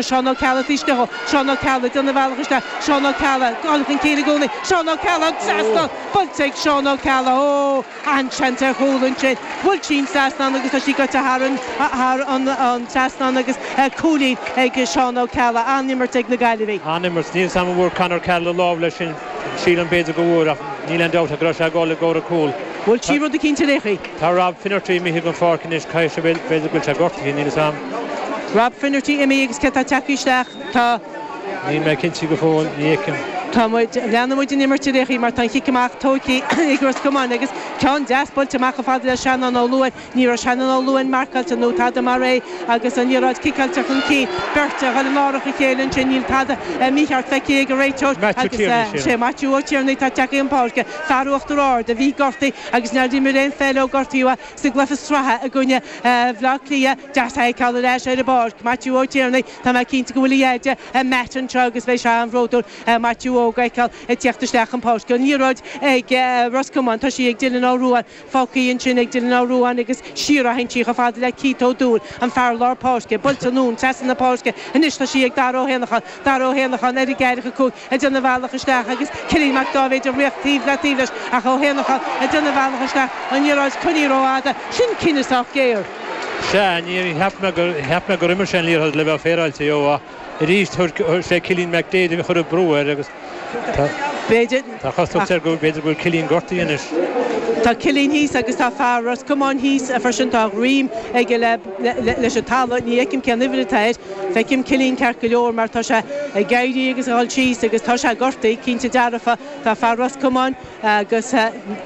Seán Ó Ceallaigh, Feistigh, Seán Ó Ceallaigh, Déanamh a bhealach isteach, Seán Ó Ceallaigh, Dul chun cinn i gcónaí, Seán Ó Ceallaigh, Trasna, buailte, Seán Ó Ceallaigh, Ó, an-seans ar chúl ansin, bhuail sí an trasnán agus tá sí goite thar an, thar an, an trasnán agus cúilín ag Seán Ó Ceallaigh. An-imirt ag na Gaillimhigh. An-imirt. Níl 's agam an bhfuair Conor Carroll lámh leis sin, sílim, b'fhéidir go bhfuair ach níl aon dabht ach go raibh sé ag dul i gcomhair an chúl. Bhuail sí rud eicínt ar a. Tá Rob Finnerty imithe dhen pháirc anois, caithfidh sé, bhuel, b'fhéidir go bhfuil sé gortaithe, níl 'fhios a'm. Rob Finnerty imithe agus cé atá ag teacht isteach, tá. Níl mé cinnte go fóill, ní fheicim. Tá muid, leanann muid an imirt a Léachie mar tá an cic amach tógtha ag Ros Comáin agus ceann deas buailte amach chomh fada le Seanán Ó Luain, ní raibh Seanán Ó Luain marcáilte nó tada mar é agus an liathróid ciceáilte chun cinn, beirt a ghoil in árach a chéile ansin, níl tada mícheart feicthe ag an réiteoir agus sé Maitiú Ó Tiarnaigh atá ag teacht chun páirce, fear Uachtar Ard a bhí gortaithe. agus nár imir aon pheil ó gortaíodh é sa gcluiche sraithe i gcoinne Bhaile Átha Cliath. Deas a fheiceáil ar ais ar an bpáirc Maitiú Ó Tiarnaigh. Tá mé cinnte go bhfuil a dheaide Matt anseo agus bheidh sé an-bhródúil Maitiú óg a fheiceáil ag tíocht isteach chun páirce. An liathróid ag Ros Comáin, tá sí ag Dylan Ó Ruáin, fágtha ansin ag Dylan Ó Ruáin agus siar a théann sí chomh fada le Keith Ó Dúill, an fear lár páirce. Buailte anonn trasna na páirce anois, tá sí ag Dara Ó hÉanacháin, Dara Ó hÉanacháin ar an gceathracha cúig. ag déanamh a bhealach isteach agus Cillian Mac Dáibhéid ag ritheacht taobh le taobh leis ach Ó hÉanacháin ag déanamh a bhealach isteach an liathróid coinnithe rófhada. Sin cinneadh sách géar. Sea, níor cheap mé gur cheap mé gur imir sé an liathróid le bheith féaráilte dhó. Arís sé Cillian Mac Daid a chuir brú air agus tá cosúlacht air go b'fhéidir go bhfuil Cillian gortaithe anois. Tá Cillian thíos agus tá fear Ros Comáin thíos freisin. Tá a dhroim aige leis an talamh. Ní fheicim cén uimhir atá air. Feicim Cillín ceart go leor mar tá sé ag éirí agus ag dhul síos agus tá sé gortaithe, cinnte dearfa. Tá fear Ros Comáin agus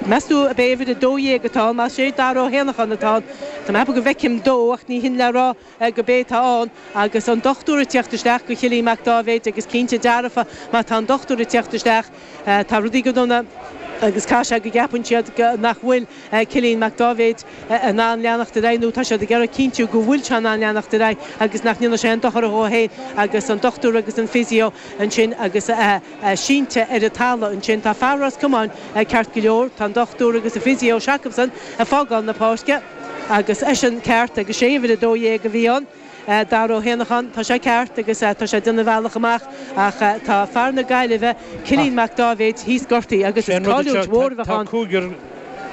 meas tú ab é uimhir 12 atá ann, más é Dara Ó hÉanacháin atá ann. Tá mé ag ceapadh go bhfeicim dó ach ní shin le rá gurb é atá ann. Agus an dochtúir ag teacht isteach go Cillín Mac Dáibhéid agus cinnte dearfa má tá an dochtúir ag teacht isteach, Tá rudaí go dona agus caithfidh sé go gceapann siad nach bhfuil Cillian Mac Dáibhéid in ann leanacht ar aghaidh nó tá siad ag iarraidh cinntiú go bhfuil sé in ann leanacht ar aghaidh agus nach ndéanfaidh sé aon dochar dhó féin agus an dochtúir agus an physio ansin agus sínte ar an talamh ansin tá fear Ros Comáin ceart go leor tá an dochtúir agus an physio seo acabsan ag fágáil na páirce agus eisean ceart agus sé uimhir a dó dhéag a bhí ann. Dara Ó hÉanacháin, Tá sé ceart agus tá sé ag déanamh a bhealach amach ach tá fear na Gaillimhe, Cillín Mac Dáibhéid, thíos gortaithe agus is cailliúint mhór a bheadh ann. Tá cúigear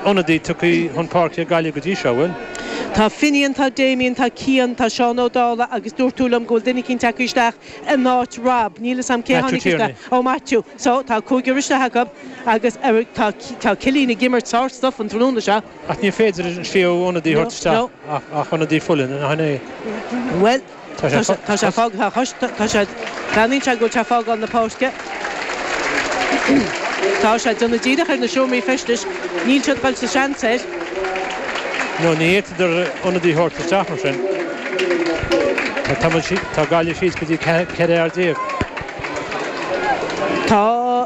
ionadaí tugtha chun páirce ag Gaillimh go dtí seo, an bhfuil? Tá Finian, tá Damien, tá Cian, tá Seán Ó Dálaigh agus dúirt tú liom go bhfuil duine eicínt tagtha isteach in áit Rob, níl 'fhios a'm cé a Maitiú tháinig Tierney. isteach. Ó Maitiú. So, tá cúigear isteach acu agus tá Cillín ag imirt sár-stuif an tráthnóna seo. Ach ní féidir an tríú ionadaí a thabhairt isteach ach ionadaí fola, an é? Bhuel, tá sé fágtha anois, tá sé, deimhníonn sé go bhfuil sé fágáil na páirce. Tá sé déanamh díreach ar na seomraí feistis, níl siad dhul sa seans air. Nó tá, féadfadar ionadaí thabhairt isteach mar sin. Tá tamall, tá Gaillimh síos go dtí 14 fear. Tá.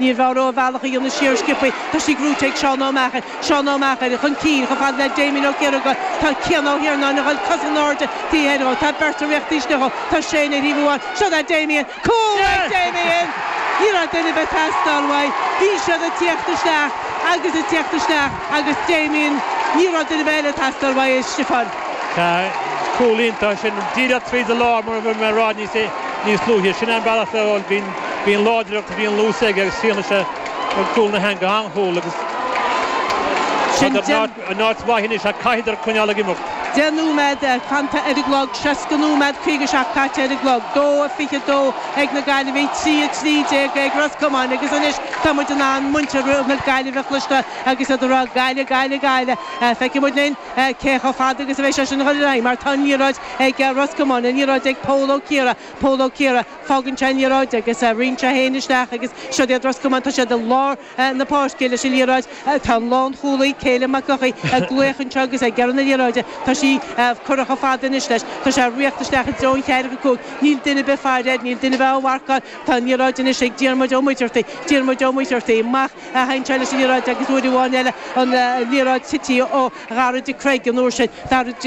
Níor mhaith dhó a bhealach a dhéanamh siar sciopfaidh Tá sí gnóite ag Seán Ó Meachair, Seán Ó Meachair, chun cinn, chomh fada le Damien Ó Ciarraighe Tá Cian Ó hIarnáin a ghoil cosa in airde taobh thoir dhó Tá beirt ag tíocht isteach dhó Tá Séan ar thaobh amháin Seo é Damien Cúl ag Damien! Ní raibh duine ar bith ag teastáil uaidh Bhí siad ag tíocht isteach agus ag tíocht isteach agus Damien Ní raibh duine ar bith eile ag teastáil uaidh, a Stiofáin. Tá cúl iontach sin díreach tríd an lár mar a bhí mé a rá níos luaithe Sin é an bealach le bhíonn Bíonn láidreacht, bíonn lúth aige agus fianaise ag cúl na heanga an-chúl agus tá sé in áit mhaith anois ach caithfidar coinneáil ag imeacht. 10 nóiméad fanta ar an gclog, 60 nóiméad 57 caite ar an gclog, 2-22 ag na Gaillimhigh, 3-13 ag Ros Comáin agus anois tá muid in ann muintir na Gaillimhe a chloisteáil agus iad ag rá 'Gaillimh, Gaillimh, Gaillimh' Feicfidh muid linn cé chomh fada agus a bheidh sé sin ag dul ar aghaidh mar tá an liathróid ag Ros Comáin, an liathróid ag Pól Ó Ciardha, Pól Ó Ciardha, Fágann sé an liathróid agus rinne sé é féin isteach agus siod iad Ros Comáin. Tá siad i lár na páirce leis an liathróid. Tá an lánchúlaí, Caelim Mac Eochaidh, ag glaoch anseo agus ag iarraidh na liathróide. Tá sí curtha chomh fada anois leis. Tá sé ag tíocht isteach i dtreo an cheathracha cúig. Níl duine ar bith ag faire air, níl duine ar bith á mharcáil. Tá an liathróid anois ag Diarmuid Ó Muircheartaigh. Diarmuid Ó Muircheartaigh amach a théann sé leis an liathróid agus uair amháin eile an liathróid tite ó Dhara de Creag an uair sin. Dara.